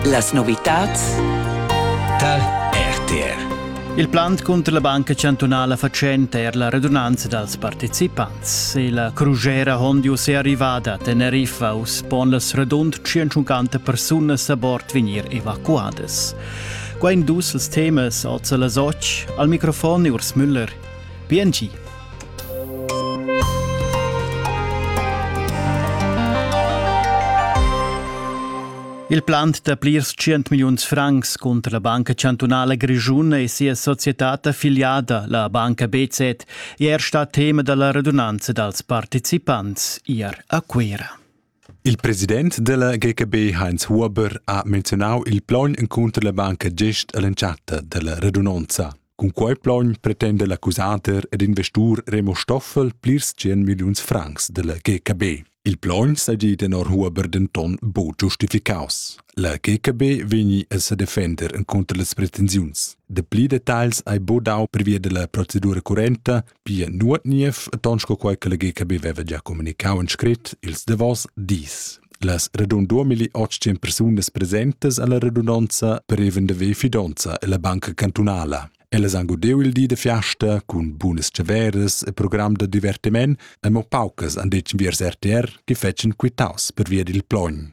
Las novitads tar RTR. Il plant cunter la Banca chantunala fatschenta er la redunanza dals participants. E la crugera Hondius è arrivada a Teneriffa. Uss pon las radund 150 persunas a bord vegnir evacuadas. Qua in dus els temas, oz las och, al microfon Urs Müller. PNG. Il plant da plirs tschient milliuns francs cunter la Banca chantunala grischuna e sia societad affiliada, la Banca BZ, è er stà tema da la radunanza dals participants ier a Cuira. Il president della GKB Heinz Huber ha menzionau il plaun encunter la banca gest all'entschatta della radunanza. Cun quei plogn pretenda l'accusader ed investur Remo Stoffel plirs 100 milliuns francs della GKB. Il plogn seigi tenor Huber denton buc giustificaus. La GKB vegni a sedefender inconter las pretensiuns. De pli detagls hai bu dau previa della procedura currenta Pia nuot niev, ton sco quei che la GKB veva gia communicau en scrit ils davos dis. Las radun 2800 persunas presentes alla radunanza preven de ve fidonza e la banca cantunala. Ellas han godeu il di de fiasta cun bunas ceveres e program de divertiment e mo paucas han detg viers RTR che fetschen quitaus per via dil plogn.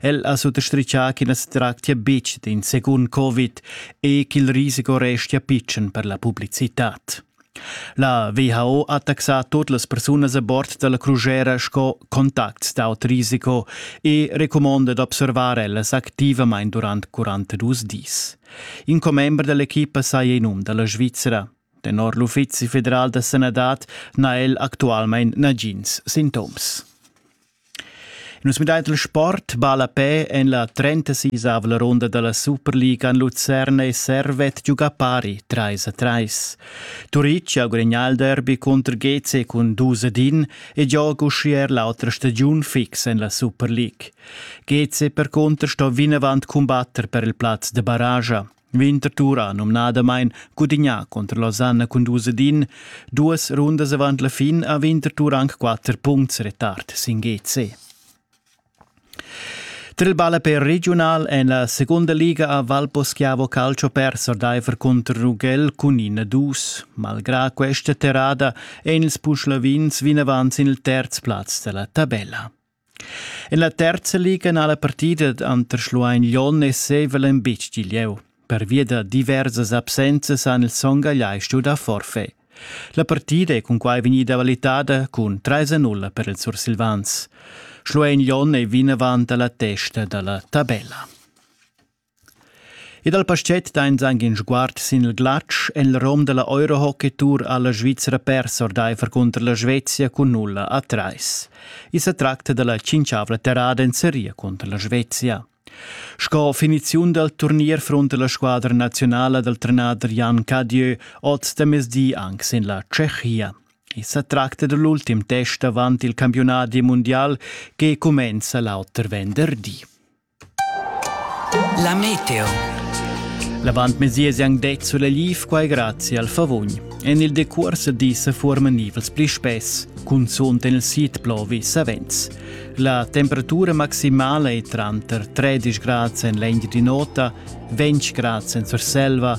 El ha suttastritgà ch'i na sa tractia betg d'in secund Covid e ch'il risico restia pitschen per la publicitad. La WHO ha taxà tut las persunas a bord da la crusera sco contacts d'aut risiko e recumonda d'observar ellas activamain durant 42 dis. In commember da l'equipa saja in um da la Svizra. Tenor l'Uffizi federal da sanadad n'ha el actualmain nagins sintoms. Nus midain il sport ballapè en la 36-ava ronda da la Superliga en Lucerne e Servet giuga pari 3 a 3. Turitg ha gudagnà il derby cunter GC cun 2 ad 1 e gioga uschia er l'autra stagiun fix en la Superliga. GC percunter sto vinavant cumbatter per il plaz da barraja. Winterthur ha numnadamain gudignà cunter Losanna cun dus ed in. Duas rundas avant la fin ha Winterthur anc quatter puncts retard sin GC. Tra il ballaper regiunal en la seconda liga ha Valposchiavo Calcio perso ordaifer cunter Ruggell cun in dus. Malgrà questa terrada èn ils Puschlavins vinavant sin il terz plaz da la tabella. En la terza liga ha la partida tranter Schluein Lyon e Sevelem bitg di lieu. Pervia da diversas absenzas han ils Son Gagliai stuì dar forfait. La partida è cunquai vegnida valitada cun 3-0 per ils sursilvans. Schluein Lyon è vinavant a la testa da la tabella. E dal paschet dains anc in sguard sin il glatsch en il rom da la Eurohockey Tour ha la Svizra pers ordaifer cunter la Svezia cun nulla a trais. I sa tracta da la tschintschavla terrada en seria cunter la Svezia. Sco finiziun dal turnier frunta la squadra nazionala dal trenader Jan Cadieu oz da mezdi anc sin la Tschechia. I sa tracta da l'ultim test avant il campiunat mundial che cumenza l'auter venderdi. La meteo. L'avantmesier han detg sulegliv quai grazie al favugn. En il decuors di se forman nivels pli spess, cunzunt en il sid plovi savens. La temperatura maximala è tranter 13 grads en l'engi di nota, 20 grads en Surselva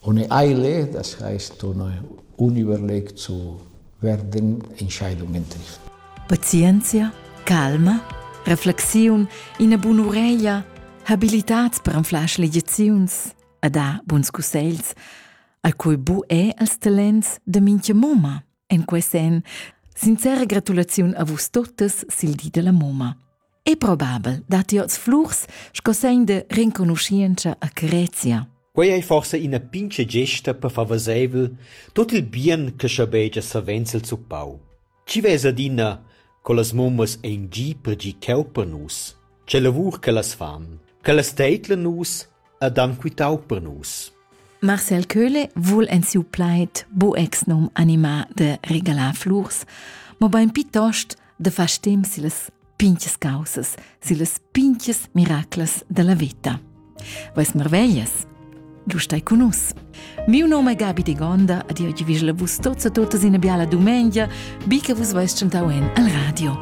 On ei eile, das heisst, on ei unüberlegt zu werden, Entscheidungen trifft. Pazienzia, calma, reflexiun, ina bun'ureglia, habilitats per anflar schlegiaziuns a da buns cussegls, a cui bu è als talents de mincha mumma en quest en. Sincera gratulaziun a vus totes sil di della mumma. È probabel dat ti oz flurs sco segn de renconuschientscha a Crezia. Quei ei forse ina pinche gesta per far vaseivel tot il bien che schabegia savenzel zuppau. Ci vesa adina co las mummas ein gi per gi cheu per nus. Ce lavur che las fan, che las teitla nus ed han quitau per nus. Marcel Köhle vul en siu plaid bu exnum animar de regalar flurs, mo bein piuttost de far stem sillas pinches causas, sillas pinches miraclas della vita. Vais marveglias? Du stai con nus. Miu nome è Gabi de Gonda, ad io vivla vus tozza totas in biala dumengia, bi che vus vais chantau en al radio.